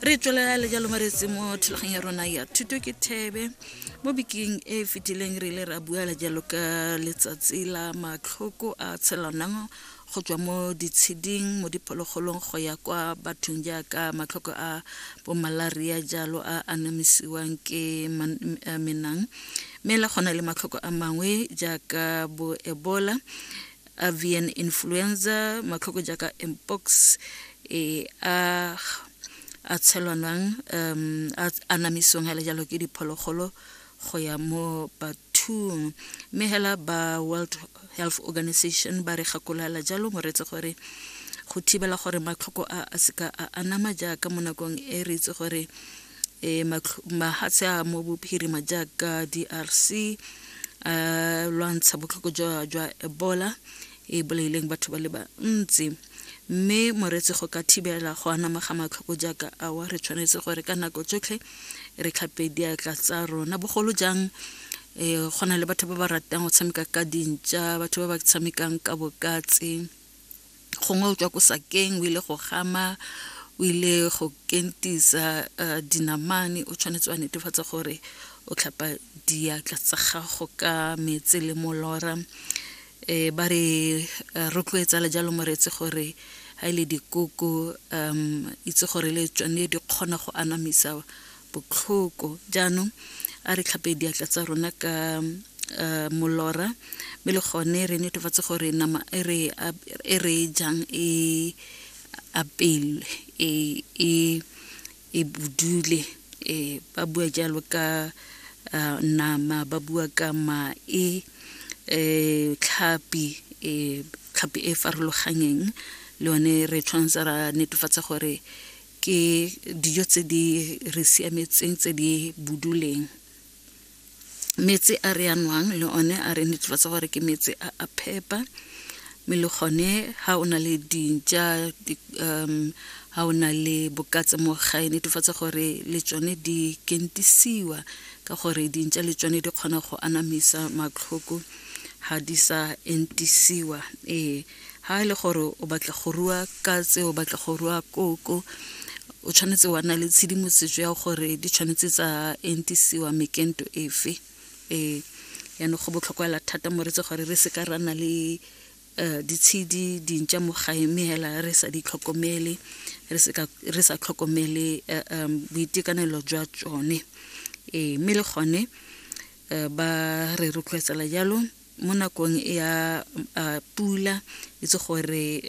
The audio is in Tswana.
re tswelela le jalo maretse mo thulaganyo ya rona ya thuto ke thebe mo bekeng e e fetileng re ile ra bua le jalo ka letsatsi la matlhoko a tshelanang go tswa mo ditsheding mo diphologolong go ya kwa bathong jaaka matlhoko a bomalaria jalo a anamisiwang ke menang mme le gona le matlhoko a mangwe jaaka bo ebola avian influenza matlhoko jaaka mpox e a a tshelwanwang um a anamisong ga le jalo ke diphologolo go ya mo bathong mme hela ba world health organization ba re gakolala jalo moretse gore go thibela gore matlhoko a a seka a anama jaaka mo nakong e re itse gore e mahatshe a mo bophirima jaaka drc a lwantsha botlhoko jwa jwa ebola e bolaileng batho ba le bantsi mme moretse go ka thibela go anama ga matlhoko jaaka awa re tshwanetse gore ka nako tsotlhe re tlhape diatla tsa rona bogolo jang um go na le batho ba ba ratang go tshameka ka dintša batho ba ba tshamekang ka bokatse gongwe o tswa ko sakeng o ile go gama o ile go kentisa uh, dinamane o tshwanetse wa netefatsa gore o tlhapa diatla tsa gago ka metse le molora um ba re eh, rotloetsa le jalo moreetsi gore ga e le dikoko um itse gore le tsone di kgona go anamisa botlhoko jaanong a re tlhape diatla tsa rona ka uh, molora mme le gone re netefatse gore nama e re e re jang e apelwe e e e budule e ba bua jalo ka uh, nama ba bua ka mae e tlhapi e tlhapi e farologanyeng le yone re tshwanetse ra netefatsa gore ke dijo tse di re siametseng tse di buduleng metsi a re yanwang le one a re netefatsa gore ke metsi a a phepa mme le gone ga o na le dintša um ga o na le bokatse mo gae netefatsa gore le tsone di kentisiwa ka gore dintša le tsone di kgona go anamisa matlhoko ga di sa entisiwa ee ha e le gore o batla go rua katse o batla go rua koko o tshwanetse wa nna le tshedimosetso ya gore di tshwanetse tsa entisiwa mekento efe ee yaanong go botlhokwela thata moretse gore re seka ra na le um ditshedi dintša mo gae mme hela re sa di tlhokomele re sa tlhokomele eh, um boitekanelo jwa tsone ee mme le gone eh, ba re rotloetsela jalo mo nakong ya pula itse gore